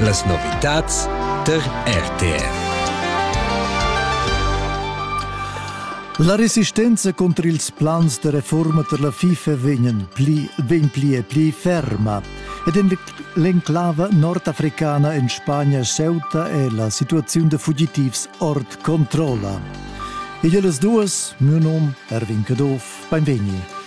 Las novitads tar RTR. La resistenza contro ils plans de reforma per la FIFA vegnan pli, vegn pli e pli ferma ed en l'enclava nordafricana en Spagna Ceuta è la situazione de fugitivs ord controlla. E las duas, mio nom Erwin Caduff Beinvegni.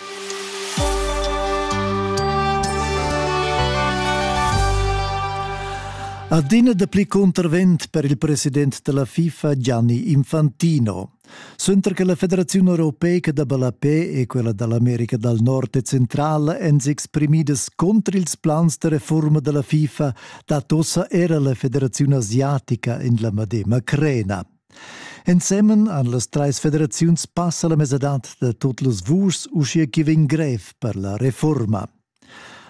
Adina dapli contravent per il president della FIFA Gianni Infantino. Suenter che la Federazione Europeica da Balapè e quella dall'America dal Nord e Centrala èn s'exprimidas contro ils plans de reforma della FIFA, dat ossa era la Federazione Asiatica in la medema crena. Ensemen han las trais federaziuns passa la mesadad da tut las vuschs uschia ch'i vegn grev per la reforma.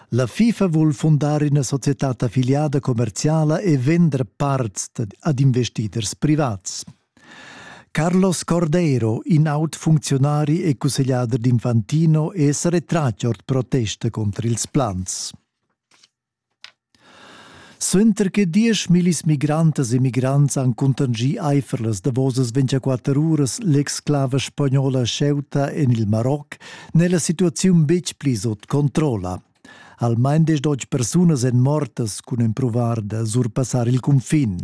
La FIFA vul fundar ina societad affiliada commerziala e vender parts ad investiders privats. Carlos Cordeiro, in aut funzionari e cussegliader d'Infantino, è retratg ord protesta contro ils plans. Suenter che diesch millis migrantas e migrants han cuntanschì aifer las davosas ventgaquatter uras l'exclava spagnola Ceuta en il Maroc, n'è la situaziun betg pli sut controlla. Almain desch persunas èn mortas cun empruvar da surpassar il cunfin.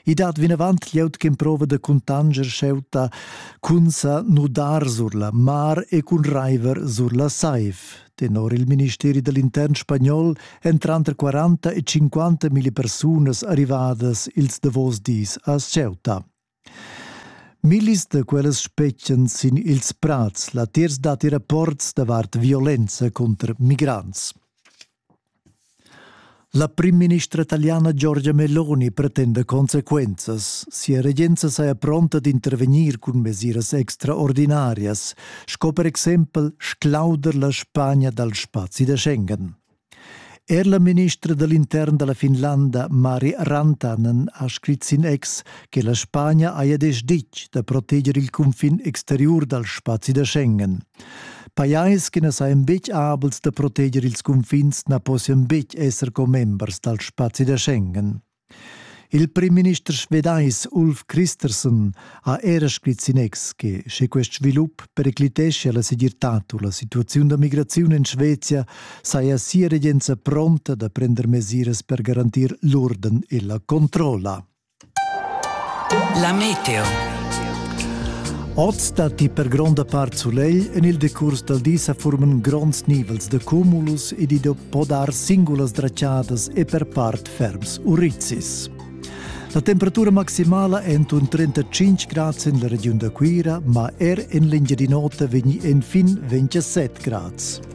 I dat vinavant glieud ch'emprova da cuntanscher Ceuta cun sa nudar sur la mar e cun raiver sur la saiv, Tenor il ministeri dall'intern spagnol èn tranter 40 e 50 mila persunas arrivadas ils davos dis a Ceuta. Millis da quellas spetgan sin ils prads. Latiers datti rapports davart violenza contro migrants. La primministra italiana Giorgia Meloni pretenda consequenzas. Sia regenza saja pronta d'intervegnir cun mesiras extraordinarias, sco per exempel sclauder la Spagna dal spazi da Schengen. Er la ministra dall'intern dalla Finlanda Mari Rantanen ha scrit sin ex che la Spagna haja desch ditg da proteger il cunfin exteriur dal spazi da Schengen. Pajais che na sajan betg abels da proteger ils cunfins na possian betg esser commembers dal spazi da Schengen. Il primminister svedais Ulf Christersen ha era scrit in ex che sche quest svilup pericliteschia la segirtad u la situaziun da migraziun en Svezia saja sia regenza pronta da prender mesiras per garantir l'urden e la controlla. La meteo. Oz datti per gronda part sulegl. En il decurs dal di sa forman gronds nivels da cumulus ed i po dar singulas dratschadas e per part ferms urizis. La temperatura maximala è entuorn 35 grad en la regiun da Cuira, ma er en l'Engiadin'Ota vegni enfin 27 grads.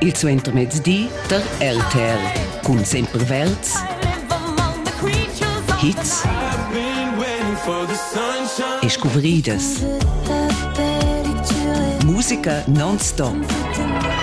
Il suentermezdi tar RTL cun sempre verds hits e scuvridas. Musica non-stop.